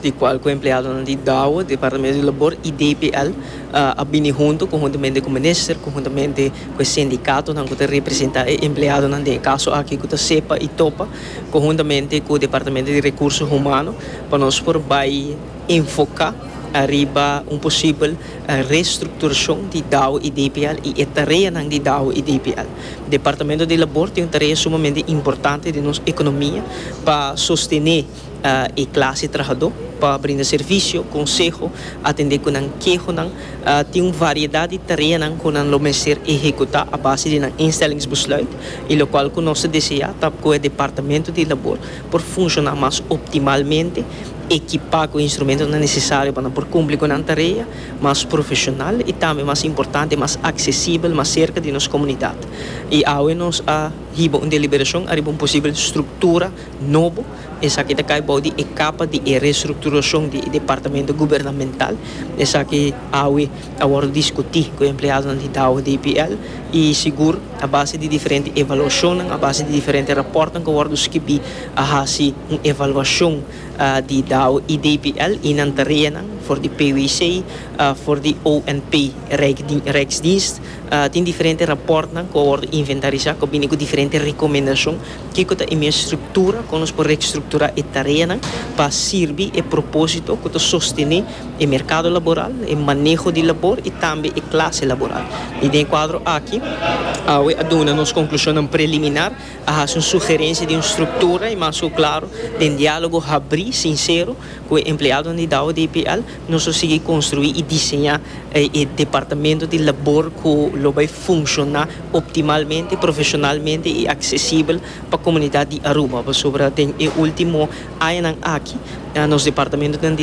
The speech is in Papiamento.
di cual cu empleadonan di Dow, Departamento di Labor y DPL a bini hunto conhuntamente cu Minister, conhuntamente cu e sindicatonan cu ta representa e empleadonan den e caso aki cu ta sepa y topa, conhuntamente cu Departamento di Recurso Humano pa nos por bay enfoca ariba un posibel restructuracion di Dow y DPL y e tareanan di Dow y DPL. Departamento di Labor tin un tarea sumamente importante den nos economia pa sostene. e clase trahadó pa brinda servicio, conseho, atendé cu nan kehonan. Tin un variedad di tareanan cu nan lo mester ehecutá a base di nan instellingsbesluit y locual cu nos ta deseá ta cu e Departamento di Labor por funcioná mas optimalmente, equipá cu instrumentonan necesario pa nan por cumpli cu nan tarea mas profesional y tambe mas importante mas accesibel, mas cerca di nos comunidad. Y awe nos a hiba un deliberacion ariba un posibel structura. nobo, esaki ta kai bou di e kapa di e restrukturashon di e departamento gubernamental, esaki awe a wòrdu diskutí ku e empleadonan di Dow DPL i sigur a base di diferente evaluashonnan, a base di diferente rapòrtnan ku a wòrdu skibí a hasi un evaluashon di Dow i DPL i nan tareanan for di PWC, for di ONP Rijksdienst tin diferente rapòrtnan ku a wòrdu inventarisá ku a bini ku diferente rekomendashon. Kiko ta e mes struktura kon nos por rekstrukturá e tareanan pa sirbi e propósito ku ta sostené e merkado laboral, e maneho di labor i tambe e klase laboral? I den e kuadro aki, awe a duna nos konklushonnan preliminar, a hasi un sugerensia di un struktura, i mas ku klaro, den diálogo habrí, sinsero, ku e empleadonan di Douwe DPL, Nos lo sigui konstruí i diseñá e departamento di labor ku lo bai funshoná optimalmente, profeshonalmente i aksesibel pa komunidat di Aruba. Pasobra den e último añanan aki nos departamentonan di.